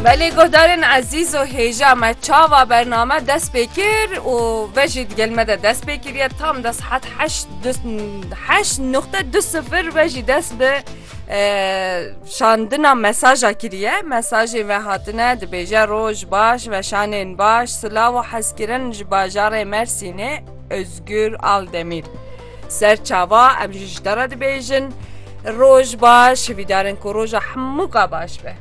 Belê guhdarên ezîz û hêja me çava bername dest pê kir û ve jî di gel me de dest pê kiriye tam de sihet heşt heşt nuqte du sifir ve jî dest bi şandina mesaja kiriye mesajê ve hatine dibêje roj baş ve şanên baş silav û hezkirin ji bajarê Mersînê Ozgur Aldemîr. Ser çava em jî ji te re dibêjin roj baş, hivîdarin ku roja hemû ka baş be.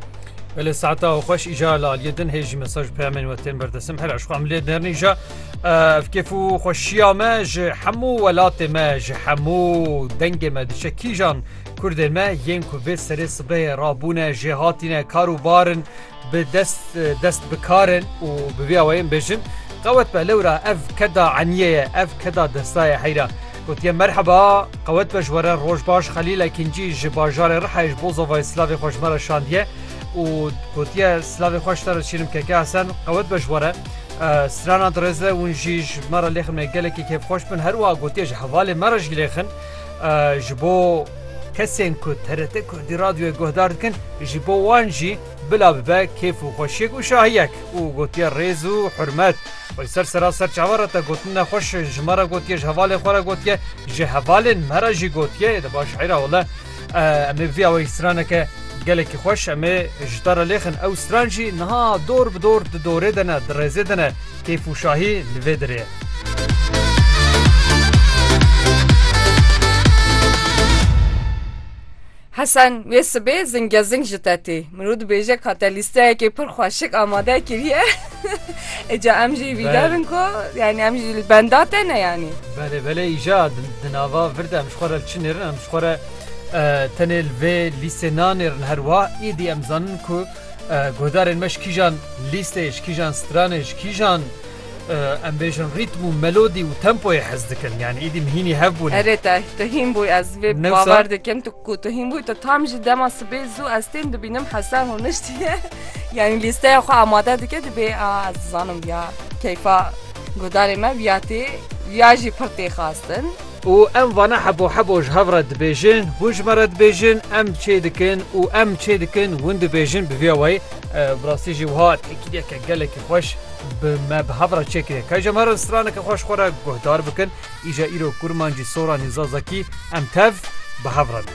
Belê saeta xweş îja li aliyê din hê jî mesaj û peyamên we tên berdesim her aşxu em lê nêrin îja ev kêf û xweşiya me ji hemû welatê me ji hemû dengê me diçe kîjan Kurdê me yên ku vê serê sibehê rabûne jêhatîne kar û barin Bi dest dest bi kar in û bi vî awayê bêjin qewet be lewra ev keda eniyê ye ev keda desta ye heyra. Gotiye merheba qewet be ji we re roj baş Xelîl Ekîncî ji bajarê Rihayê ji bo zovayê silavê xwe ji me re şandiye û gotiye silavê xwe ji te re çînim Keke Hesen qewet be ji we re strana dirêz be hûn jî ji me re lêxin me gelekî kêfxweş bin herwiha gotiye ji hevalê me re jî lêxin ji bo Kesên ku TRT Kurdî Radyoyê guhdar dikin ji bo wan jî bila bibe kêf û xweşiyek û şahiyek û gotiye rêz û hurmet. Xwe li ser sera ser çavan re te gotin nexweş ji me re gotiye, ji hevalên xwe re gotiye, ji hevalên me re jî gotiye yê di ba şîra wele em ê bi vî awayî straneke gelekî xweş em ê ji te re lêxin. Ew stran jî niha dor bi dor di dorê de ne, di rêzê de ne. Keyf û şahî li vê dirê ye. Hesen, wê sibê zingezing ji te tê. Mirov dibêje ka te lîsteyekê pir xwe şik amade kiriye. Eca em jî vîdar in ku yanî em jî li benda te ne yanî. Belê belê îja di nava vir de em ji xwe re li çi nêrin? Em ji xwe re tenê li vê lîstê nanêrin herwiha. Êdî em dizanin ku Guhdarên me ji kîjan lîstê, ji kîjan stranê, ji kîjan em bêjin rîtm û melodî û tempoyê hez dikin. Yanî îdî mihînî hev bûne. Erê te, tu hîn bûyî ez vê bi bawer dikim tu ku tu hîn bûyî tu tam jî dema sibê zû ez tên dibînim Hesen rûniştiye yanî lîsteya xwe amade dike dibê a ez dizanim ya keyfa guhdarê me viya tê viya jî pir tê xastin. Û em vana hebo hebo ji hev re dibêjin, hûn ji me re dibêjin, em çê dikin û em çê dikin hûn dibêjin bi vîya wayî. Bi rastî jî wiha têkiliyeke gelekî xweş bi me bi hev re çêkiriye. Kay ji em herin straneke xweş xwe re guhdar bikin. Îja îro Kurmancî Soranî Zazakî em tev bi hev re ne.